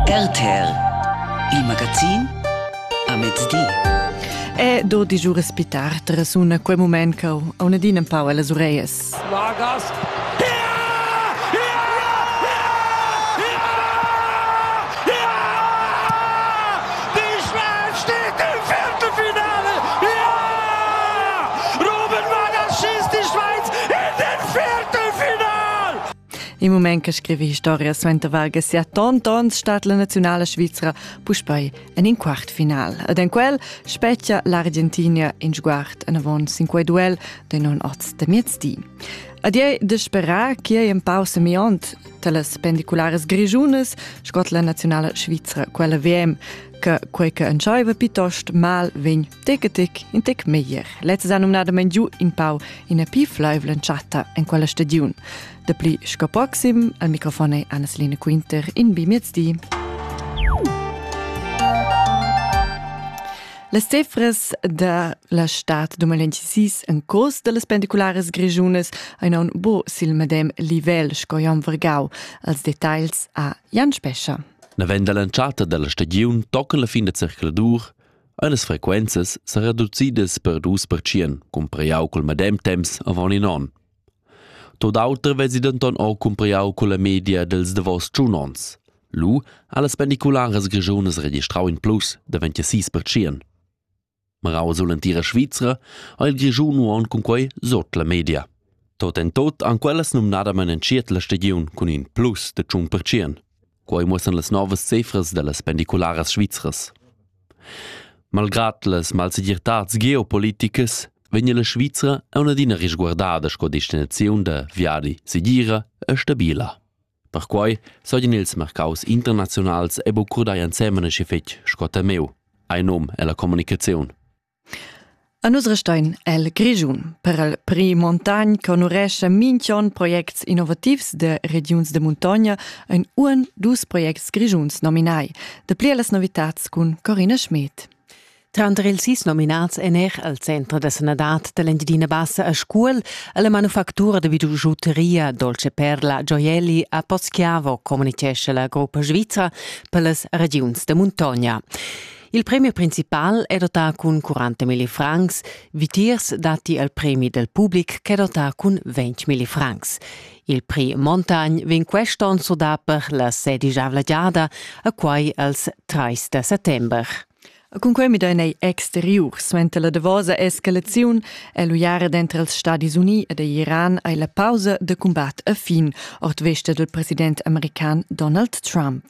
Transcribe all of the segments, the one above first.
RTL Il magazin a mezdi. E do di giù respitar trasuna quel moment che ho una din un pau alle orejas. Vargas. In mument che scrivi historia suenter varga sia tontons stat la nazionala svizra puspei en in quart final. Ed en quel spetgia l'Argentina in sguard anavon sin quei duel de non oz de miezdi. Ad ei de sperar che ei empau semiont talas pendiculares grigiunas scot la nazionala svizra quella VM che quei che entscheiva piuttost mal vegn Tegetic, in tec meglier. Lezza ha numnadament giu in pau ina pi flaivla chatta en quella stagiun. Dapli sco proxim, al microfon è Anneline Quinter in bi miezdi. Las cifras da la stad 2026 en curs da las pendiculares grischunas ein aun bo sil medem livel sco Jan Vergau. Als details a Jan Spescha. Navend dall'entschatta dalla stagiun tocca la fin da circuladur ein las frequenzas sa reducidas per dus percient cumpriau cul medem temps avon in onn. Tot auter vesi denton o cumpriau culla media dels davos tschun onns. Lu ha las pendicularas grischunas registrau in plus de 26 percient. Marau sull'entira Svizra ha il Grischun uonn cun quei sot la media. Tot en tot han quellas numnadamen entschiet la stagiun cun in plus de tschun percient. Quei muossan las novas cifras dallas pendicularas svizras. Malgrad las malsegirtads geopoliticas vegn la Svizra aunc adina risguardada sco destinaziun da viadi segira e stabila. Perquei sogen ils mercaus internazionals e bucurdai ensemen e fetg sco temeu, ein num ella comunicaziun. A nus restein el Grischun. Per el prix Montagn conurescha minch'on projects innovativs da regiuns da muntogna ein uon dus projects grischuns nominai. Da pli las novitats cun Corina Schmed. Tranter ils sis nominats en er al Centro da Sanadad dell'Engiadina Bassa a Scuol alla manufactura da bijuteria Dolce Perla Gioielli a Poschiavo communicesce la gruppa svizra per las regiuns da muntogna. Il premi principal è dotà cun 40 milli francs, vitiers datti il premi del public ch'è dotà cun 20 milli francs. Il prix Montagnes vegn quest onn sudà per la sedicavla giada, a quai als 30 da settember. Cun quei midain ei exteriur, suenter la davosa escalaziun, è l'uiara dentro els Stadis Uni ed Iran ei la pausa de combat a fin, ord vesta del president american Donald Trump.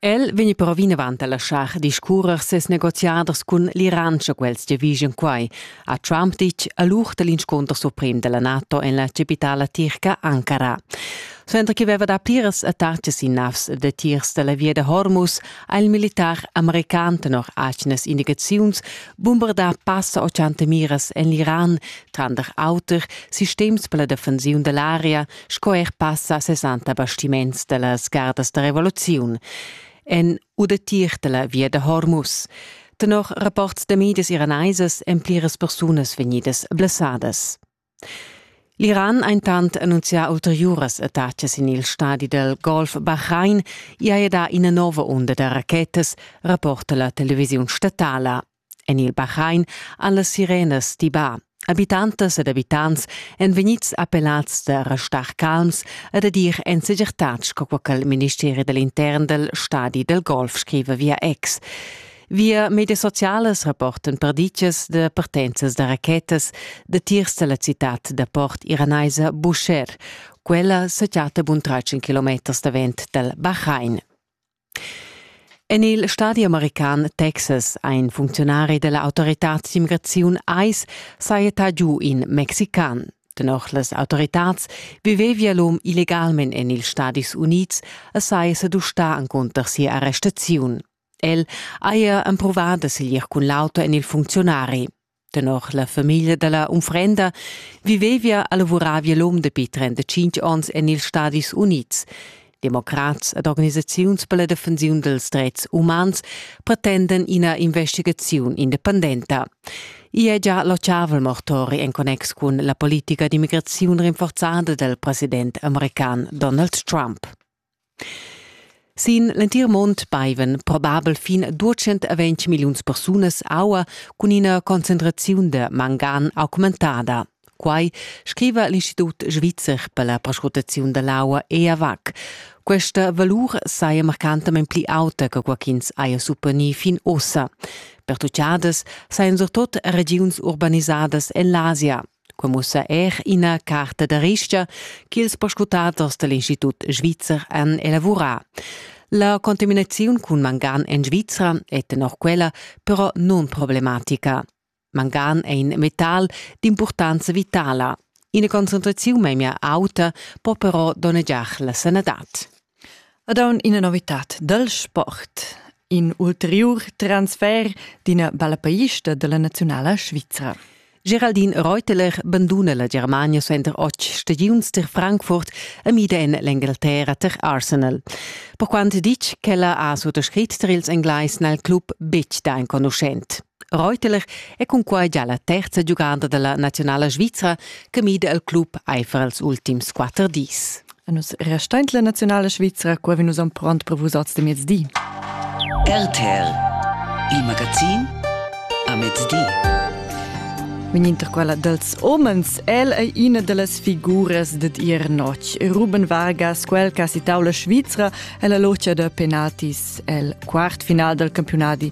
El vegni però vinavant a laschar discurrer ses negoziaders cun l'Iran sche quels giavischan quai, ha Trump ditg a l'ur da l'inscunter suprem da la NATO en la capitala tirca Ankara. Suenter che veva dà pliras attacas sin navs datiers da la via da Hormuz ha il militar american tenor atgnas indicaziuns bombardà passa 80 miras en l'Iran, tranter auter sistems per la defensiun da l'aria, sco er passa 60 bastiments dellas gardas da revoluziun en udetir della via da Hormuz. Tenor rapports da medias iraneisas en pliras persunas vegnidas blessadas. L'Iran ha intant annunzià ulteriuras attacas in il stadi del Golf Bahrain e ha dà ina nova onda da rachetas, rapporta la televisiun statala En il Bahrain han las sirenas tibà. Abitantas ed abitants èn vegnids appellads da restar calms e da dir en segirtad sco co che il ministeri da l'intern dal stadi dal golf scriva via ex. Via medias socialas rapportan perditgas da partenzas da rachetas da tiers da la citad da port iranaisa Busher. Quella sa chatta bun tratg in kilometers davent dal Bahrain. En il stadi american Texas ha in funcziunari della autoritad d'immigraziun ICE sajetà giu in Mexican. Tenor las autoritads vivevia l'um illegalment en ils Stadis Unids e saja sedustà encunter sia arrestaziun. El haja empruvà da siglir cun l'auto en il funcziunari. Tenor la famiglia dalla unfrenda vivevia e lavoravia l'um dapi 35 onns en ils Stadis Unids. Democrats ed organisaziuns per la defensiun dels drets umans pretenden ina investigaziun independenta. I è già locciavel mortori en connex cun la politica d'immigraziun rinforzada del president american Donald Trump. Sin l'entir mund baivan probabel fin duecent a ventg milliuns persunas aua cun ina concentraziun da mangan augmentada. Quai scriva l'Institut svizzer per la perscrutaziun da l'aua EAVAC. Questa valur saja marcantamain pli auta che quai ch'ins haja supponì fin ossa. Pertuchadas sajan surtut regiuns urbanisadas en l'Asia, Quei mussa er ina carta da rista ch'ils perscrutaders dall'Institut svizzer han elavurà. La contaminaziun cun mangan en Svizra è tenor quella però nunproblematica. Mangan è in metal d'impurtanza vitala. Ina concentraziun memia auta può però donnegiar la sanadad. Ed aun ina novitad dal sport. In ulteriur transfer d'ina bella paista dalla naziunala svizra. Geraldine Reuteler banduna la Germania suenter otg stagiuns tar Frankfurt e mida en l'Engalterra tar Arsenal. Per quant ditg ch'ella ha suttascrit tar ils Englais n'è il club betg da enconuschent. Reuteler è cunquai gia la terza giuganda dalla nazionala svizra che mida il club eifer els ultims quatter dis. Nus restain la nazionala svizra, qua vi nus am pront per vusats de mezdi. RTL, il magazin a mezdi. Vin inter quella dels homens, el ei ina dellas figuras ded ir notg. Ruben Vargas, quel che ha citau la Svizra, è la locia da penaltis el quart final del campionati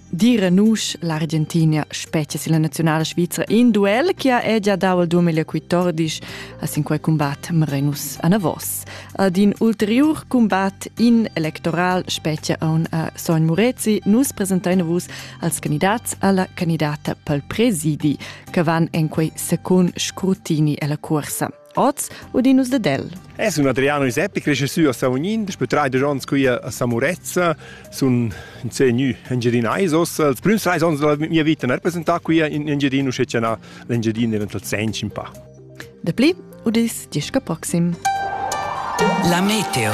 Dire nusch l'Argentina specie silla nazionala svizra in duel che ha già dau il 2014 a sin quei combat Merenus Anavos. Ad in ulteriur combat in electoral specie on a Sogn Murezi nus presentein vus als candidats alla candidata pel presidi che van en quei secund scrutini alla corsa. Oz udinus ded el. E sun Adriano Iseppi crescessü a Savognin, daspö traidesch ons qui a Samurezza, sun in sé gnü Engiadinais os. Els prüms trais ons della mia vita n'ha representà qui in Engiadino, sche c'è l'Engiadino eventual sench in pa. De pli, udis disca proxim. La meteo.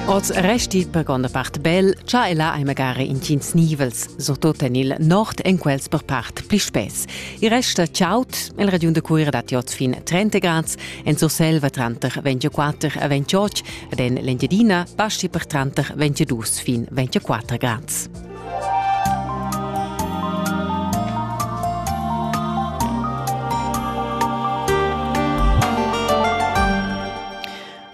Oz resti per gronda part bel, cha ella hai magari in tins nivels, surtut en il nord en quels per part pli spess. Il rest da Chaut, nel regiun de Cuira dat oz fin 30 grads, en Surselva tranter 24 e 28 ed en l'Engiadina passi per tranter 22 fin 24 grads.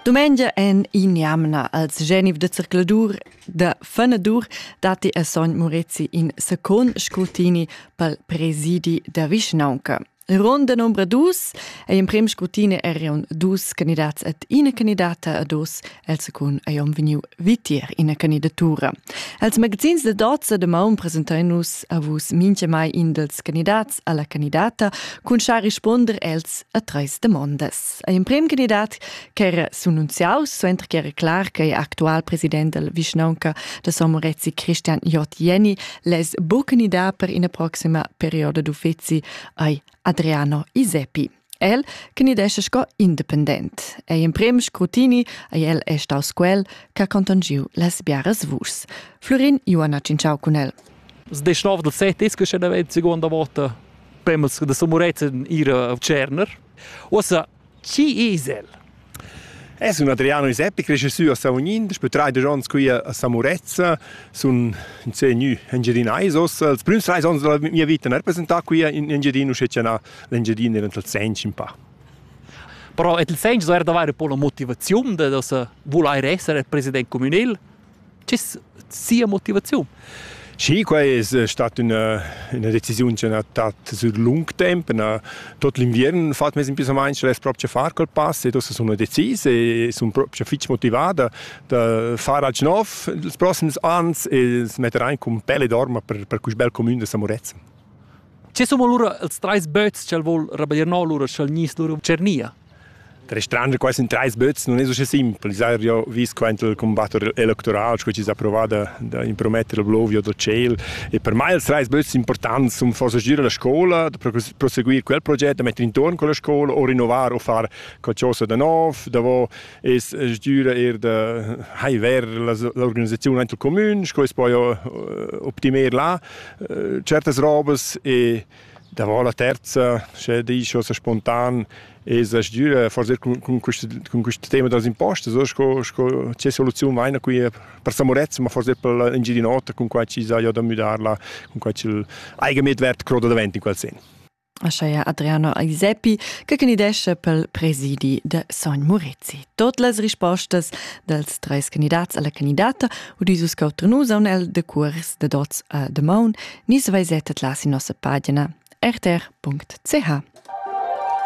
Dumengia en injamna als Geniv de Zircladur Da fenadur datti a sogn Murezi in secund scrutini pel presidi da vischnaunca. Ron da nombra dus è in prim scrutini erion dus candidats et ina candidata a dus el secund ei om veniu vitier ina candidatura. Els magazins de dozza de maun presentai nus a vus minche mai in dels candidats alla candidata cun schar risponder els a treis demondas. È emprem candidat ch'era s'annunziaus suenter che era clar che actual president del vischnaunca da Somorezzi Christian J. Jenny les bu candidat per ina proxima perioda d'uffizi ai Adriano Iseppi. El candidesce sco independent. Ei emprem scrutini ei el è staus quel che ha contangiu las biaras vuschs. Florin Ioana Cinciao cun el. Das 19 del 7 ist schon die zweite Seconde Vote. Premels de Somorezzi ihre Cerner. Uossa, chi es el? Es un Adriano Iseppi, cresce sü a Savognin, daspö traidesch ons qui a Samurezza, sun insé gnü Engiadinais ossa. Els prüms trais ons della mia vita n'ha representà qui in Engiadino, sche cha na l'Engiadino era nel segns in pa. Però et il segns so eir d'avair po la motivaziun da da se vulair esser president communel? sia motivaziun. Sì, quai è stata una, una decisione che ha dato sur lung tempo. Tot l'inviern ho fatg mes impissamaints per proprio far quel pass e dopo sono decis e sono proprio fitch motivada da far alch nov ils prossimi ans e metter ein cum pelle dorma per, per cusì bel comune de Samorezza. Che sono allora ils treis böts che el vuol rabaglier no, allora sch'el gnisse lura Cernia? Restrender quasi in treis böts non es usche simpel. Ins haja jo vis quaint il combatt electoral, sco chi s'ha provà da, da imprometter il Blovio dal tschel. E per mai ils treis böts importants sun forsa gir la scoula, da proseguir quel proget, da mettere intorno quella scoula o rinnovar o far qualcosa da nov. Davo es sgüra eir da hai ver l'organisaziun aint il comün, sco es poi optimer là. Certas robas e Davant la terza, sche dici o spontan, es la sdüra forsa cun, cun, quist, cun quist tema dals impostos, o sco, sco che soluziun vaina qui per Samorezza, ma forsa per l'Engiadin'Ota, cun quai chi saja da müdarla, cun quai ch'il eigenmedwert croda davent in quel sen. Ascheia Adriano Iseppi, che candidesce pel presidi de Sogn Murezi. Tot las rispostas dels treis candidats alla candidata udis uscau Trenusa un el de cuors de dots a de maun Nis vaisettet là sin nossa pagina rtr.ch.